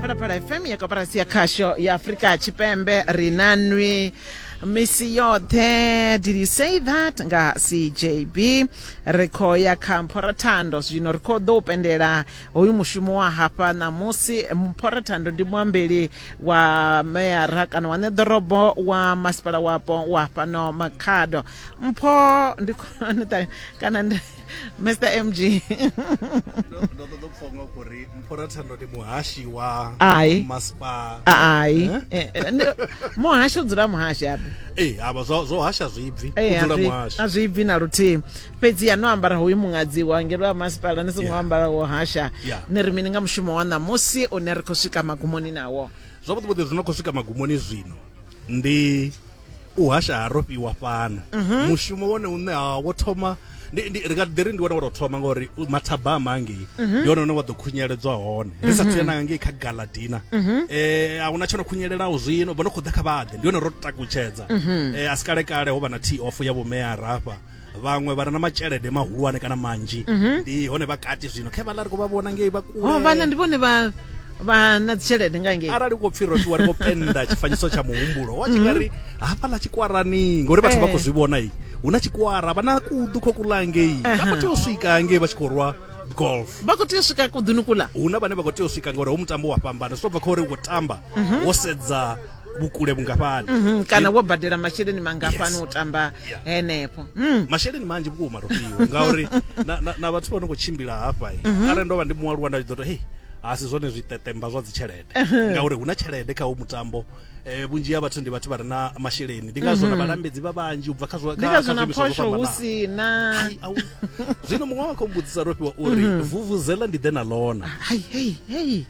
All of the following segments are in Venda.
phalaphala fm ya koporasi ya khasho ya afurika tshipembe ri na nwi misi yoṱhe did you say that nga cjb ri khou ya kha mphorathando zwino ri khou ḓo u pendela hoyu mushumo wa hafha ṋamusi mphorathando ndi muambeli wa meyara kana wa ṋeḓorobo wa masipala wapo wa fhano makhado mpho ndi khou- kana ndi mr mg ndo ṱoḓa u pfhonga kuri mphora thando ndi muhashi wa ai maspa ai eh? eh, eh, muhashi u dzula muhashi apo ee hava zwo hasha zwibvi udzula muhashi a zwibvi na luthihi fhedzi ya no ambara hoyu muṅadzi wa ngelo wa masipala ni songo ambara wo hasha ni ri mini nga mushumo wa ṋamusi une ri khou swika magumoni nawo zwavhuḓi vhuḓi zwi no khou swika magumoni zwino ndi u hasha ha rofhiwa fhano mhm. mushumo wone une ha wo thoma ndi ri nga ḓi ri ndi wone wa tou thoma ngori mathabama angei mhm. ndi wone une wa ḓo khunyeledzwa hone ri sa mhm. thuyana nga ngei kha galadina um a huna tsho no khunyelelaho zwino vho no khou ḓa kha vhaḓe ndi wone ro takutshedza um a si kalekale ho vha na t off ya vhomeya rafha vhaṅwe vha re na matshelede mahulwane kana manzhi mhm. ndi hone vha kati zwino khe vhaḽa ri khou vha vhona ngei vha kule oh, vhaḽa ndi vhone vha vha na dzitshelede nga ngei arali ko pfhi roṱiwa ri khou penda tshifanyiso tsha muhumbulo wa tshi nga mhm. ri hafhaḽa tshikwarani ngori vhathu vha khou eh. zwi vhona i hu na tshikwara vha na kuḓu khou kula ngei vha khou tea u swika ngei vha tshi khou rwa golf vha khou tea u swika kuḓuni kula hu na vhane vha khou tea u swika ngori hu mutambo wa fhambana zwi to bva kha uri wo tamba mhm. wo sedza vhukule vhungafhani mm -hmm. kana wo badela masheleni mangafhani yes. u tamba yeah. henefho mm. masheleni manzhi vhukuma rofhiwa ngauri na, na, na vhathu vha no khou tshimbila hafha mm -hmm. arali ndo vha ndi mualuwa nda tshi ḓo to hei a si zwone zwitetemba zwa dzitshelede ngauri hu na tshelede kha u mutambo eh vhunzhi ha vhathu ndi vhathu vha re na masheleni ndi ngazwo na mhm. vhalambedzi vha vhanzhi u bva kha zwa kha kha zwa phosho hu si na zwino muṅwe wa khombudzisa ro fhiwa uri mhm. vuvuzela ndi ḓe na lona hai hei hei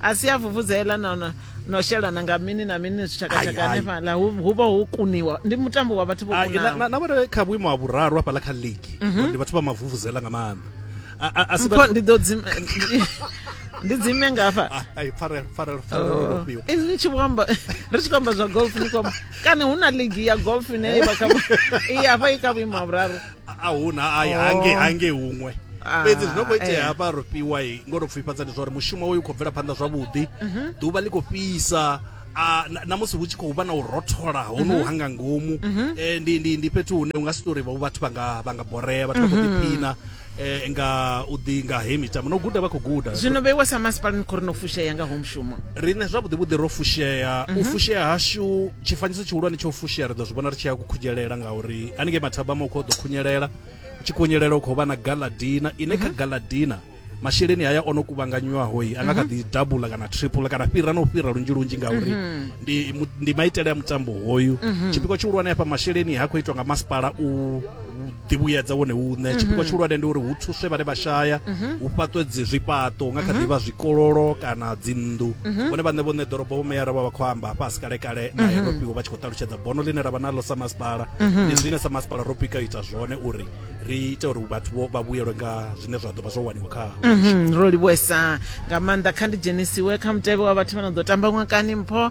a si a vuvudzela no no no shelana nga mini na mini zwitshakatshaka Hai, hai. hanefhaḽa hu hu vha ho kuniwa ndi mutambo wa vhathu vho Ah, na- kunaho na- na vhone kha vhuimo ha vhuraru hafhaḽa kha ligi ndi vhathu vha mavuvuzela nga maanḓa A- a- a si mpho vhathu- ndi ḓo dzime ndi dzime ngafha Ah, ai, pfarelo pfarelo pfarelo ro fhiwa Eh, ni tshi vho amba ri tshi khou amba zwa golf ni khou amba kana hu na ligi ya golf ine i vha kha vhu- i hafha i kha vhuimo ha vhuraru a huna ai hange hange huṅwe Ah, fhedzi zwi no khou itea eh. hafha ro fhiwa i ngo to pfifhadza ndi zwa uri mushumo uyu u khou bvela phanḓa zwavhuḓi Mhm. ḓuvha ḽi khou fhisa a, na- na musi hu tshi khou vha na u rothola ho no Mhm. hanga ngomu Mhm. eh, ndi, ndi, ndi fhethu hune u nga si tori vha- vhathu vha nga vha nga borea vhathu vha khou Mhm. ḓiphina eh, nga u ḓi nga he mitambo no guda vha khou guda zwino vheiwa sa masipala ni khou ri no fushea nga ho mushumo riṋe zwavhuḓivhuḓi ro fushea u Mhm. fushea hashu tshifanyiso tshihulwane tsho fushea ri ḓo zwi vhona ri tshi ya kukhunyelela ngauri haningei mathabama u khou ḓo khunyelela u tshi khunyelela u khou vha na galadina ine kha mhm. galadina masheleni haya o no kuvhanganywaho i a nga kha mhm. ḓi dabula kana triple kana fhira na u fhira lunzhi lunzhi ngauri mhm. ndi, ndi maitele a mutambo hoyu tshipiko tshihulwane hafha masheleni ha khou itwa nga masipala u ḓivhuyedza wone uṋe mhm. tshipikwa tshihulwane ndi uri hu thuswe vhane vha shaya mhm. hu fhaṱwe dzi zwifhaṱo nga kha mhm. ḓivha zwikololo kana dzinnḓu vhone vhaṋe vhoṋe ḓorobo vho meyara vha vha khou amba fhasi kale kale na europiwo vha tshi khou ṱalutshedza bono ḽine ra vha naḽo sa masipala ndi zwine sa masipala ro pika ita zwone uri ri ite uri vhathu vho vha vhuyelwe nga zwine zwa ḓo vha zwo waniwa kha ro livhuesa nga maanḓa kha ndi dzhenisiwe kha mutevhe wa vhathu vha no ḓo tamba ṅwakani mpho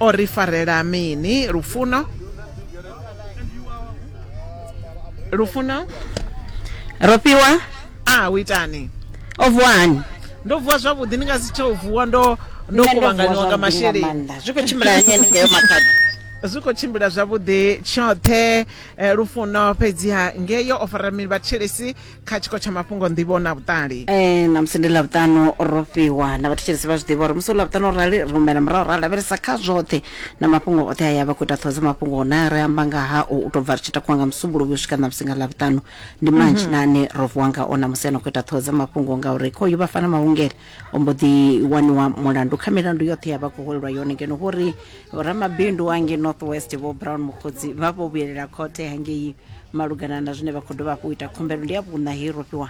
o ri farela mini lufuno lufuno ro fhiwa a u itani o vuwa hani ndo vuwa zwavhuḓi ndi nga si tsha u vuwa ndo ndo kuvhanganiwa nga masheleni zwi khou tshimbila hani haningeo makhadzi zwi khou tshimbila zwavhuḓi tshoṱhe eh, lufuno fhedziha ngeyo o fara mini vhathetshelesi kha tshiko tsha mafhungo nḓivho na vhuṱali eh na musi ndi lavhuṱanu ro fhiwa na vhathetshelesi vha zwi ḓivha uri musi u lavhuṱanu rali ri humela murahu ra lavhelesa kha zwoṱhe na mafhungo oṱhe a ya vha khou ita ṱhoho dza mafhungo hona ri amba nga ha u tou bva ri tshi takuwa nga musumbuluwi u swika na musi nga lavhuṱanu ndi manzhi na ane ro vuwa ngao na musi a no khou ita ṱhoho dza mafhungo ngauri khoyu vhafana mahungele o mbo ḓi waniwa mulandu kha milandu yoṱhe ya vha khou holelwa yone ngeno hu ri ramabindu ange north west vho brown mukhodzi vha vho vhuyelela khothe hangei malugana na zwine vha khou dovha hafhu u ita khumbelo ndi ya vhuṋa hei rofhiwa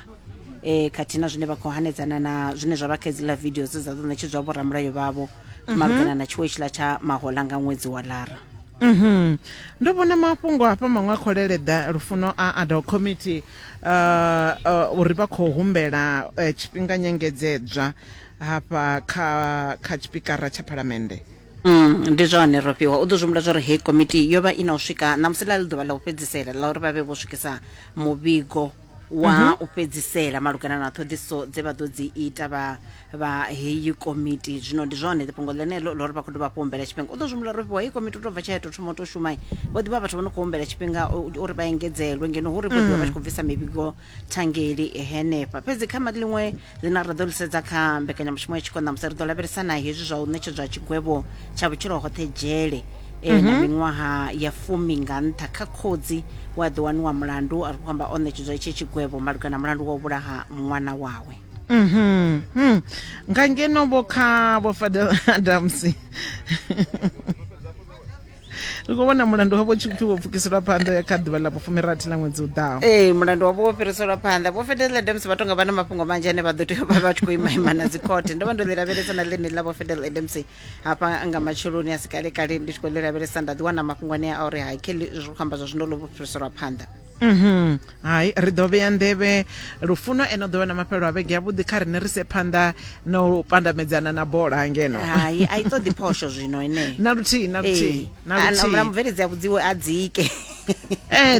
e khathihi na zwine vha khou hanedzana na zwine zwa vha kha idziḽa video dze dza ḓo ṋetshedzwa vhoramulayo vhavho mhm. malugana na tshiwo tshiḽa tsha mahola nga ṅwedzi wa lara mhm. ndo vhona mafhungo hafha maṅwe a kholeleḓa lufuno a adult committee uh, uri vha khou humbela uh, tshifhinga nyengedzedzwa hafha kha kha tshipikara tsha phalamennde Mm, ndi zwone ro fhiwa u ḓo zwi humbula zwa uri heyi komiti yo vha i na u swika ṋamusi ḽa ḽi ḓuvha ḽa u fhedzisela ḽa uri vha vhe vho swikisa muvhigo wa u fhedzisela malugana na ṱhoḓisiso dze vha ḓo dzi ita vha vha heyi komiti zwino ndi zwone fhungo ḽeneḽo ḽo ri vha khou dovha hafhu humbela tshifhinga u ḓo zwi humbula uri fhiwa heyi komiti u tou bva tsha ya tou thoma u tou shumai vho ḓivha vhathu vho no khou humbela tshifhinga u- u- uri vha engedzelwe ngeno hu ri vho ḓivha vha tshi khou bvisa mivhigo thangeli henefha fhedzi kha ma- ḽiṅwe ḽine ra ḓo lisedza kha mbekanyamushumo ya tshiko ṋamusi ri ḓo lavhelesa na hezwi zwa u ṋetshedzwa tshigwevho tsha vhutshilo hoṱhe dzhele eh, na miṅwaha ya fumi nga nṱha kha khotsi we a ḓo waniwa mulandu a ri khou amba o ṋetshedzwa hetshi tshigwevho malugana na mulandu wa u vhulaha ṅwana wawe mhm nga ngeno vho kha vho fadel adams ri khou vhona mulandu wavho tshi pfi wo pfukiselwa phanḓa kha ḓuvha ḽa vhufumirathi ḽa ṅwedzi u ḓaho ee mulandu wavho wo fhiriselwa phanḓa vho fedela adams vha tonga vha na mafhungo manzhi ane vha ḓo tea vha vha tshi khou imaima na dzikhothe ndo vha ndo ḽi lavhelesa na ḽine ḽa vho fedela adams hafha nga matsheloni a si kalekale ndi tshi khou ḽi lavhelesa nda ḓiwana mafhungo ane a uri ha kelly zwi khou amba zwa zwino ḽo vho fhiriselwa phanḓa Mhm. Hai ri ḓo vhea nḓevhe lufuno eno ḓo wana mafhelo a vhege yavhuḓi kha rine ri se phanḓa na u pandamedzana na bola ngeno. Hai a i ṱoḓi phosho zwino ine. Na luthihi na luthihi eh, na luthihi. Ana mubveledzi a vhudziwe a dzike. Eh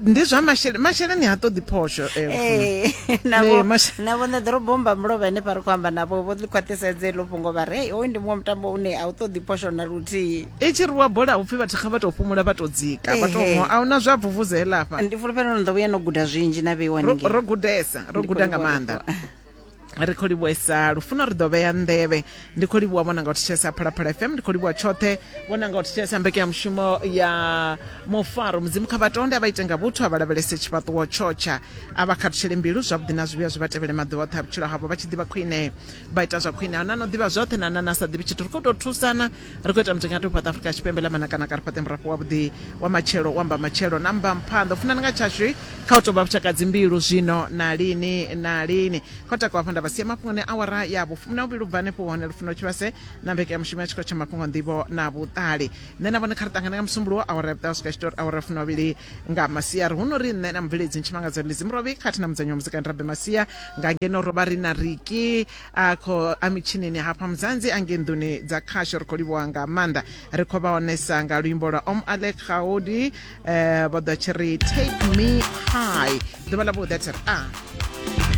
ndi zwa masheleni masheleni ha ṱoḓi phosho eh. eh na vho na vho nṋe ḓoro bomba mulovha ine pa ri khou amba navho vho ḽi khwaṱhisedze ḽo fhungo vha re hey hoyu ndi muṅwe mutambo une a u ṱoḓi phosho na luthihi. i tshi rwiwa bola hupfi vhathu kha vha tou fhumula vha tou dzika vha tou a huna zwa vuvuza heḽa afha ndi fulufhela uri ni ḓo vhuya no guda zwinzhi na vheiwa ningei ro gudesa ro guda nga maanḓa ri khou livhuesa lufuno ri ḓo vhea nḓevhe ndi khou livhuwa vhona nga u thetshelesa phalaphala fm ndi khou livhuwa tshoṱhe vhona nga u thetshelesa mbekanyamushumo ya mufaro mudzimu kha vhatonde a vha ite nga vhuthu a vha lavhelese tshifhaṱuwo tshotsha a vha khathutshele mbilu zwavhuḓi na zwivhuya zwi vha tevhele maḓuvha oṱhe a vhutshilo havho vha tshi ḓivha khwine vha ita zwa khwine a na no ḓivha zwoṱhe na na na sa ḓivhi tshithu ri khou tou thusana Ri khou ita mutingati u fhaṱa Afrika Tshipembe ḽa manakana kha ri fhaṱe murafho wavhuḓi wa matshelo wa mbamatshelo na mbamphanḓa u funani nga tshashu kha u tou vha vhushaka dzimbilu zwino na lini na lini kha u takuwa hafho nda vha sia mafhungoni awara ya vhufumi na vhuvhili u bva hanefho hone lufuno tshivhase na mbekanyamushumo ya tshikolo tsha mafhungo nḓivho na vhuṱali nṋe na vhone kha ri ṱangane nga musumbulowo awara ya vhuṱaho swika tshitori awara ya fumi vhavhili nga masiari hu no ri nṋe na mubveledzi ntshimangadzo ndi dzimurovhi khathihi na mudzanyi wa muzikani rabe masia nga ngeno ro vha ri na riki a kho a mitshinini hafha muzanzi a nge nḓuni dza khasho ri khou livhuwa nga maanḓa ri khou vha onesa nga luimbo lwa om alek gaudi um vho ḓo tshi ri take me high ḓuvha ḽa vhuḓi a tshi ri a ah.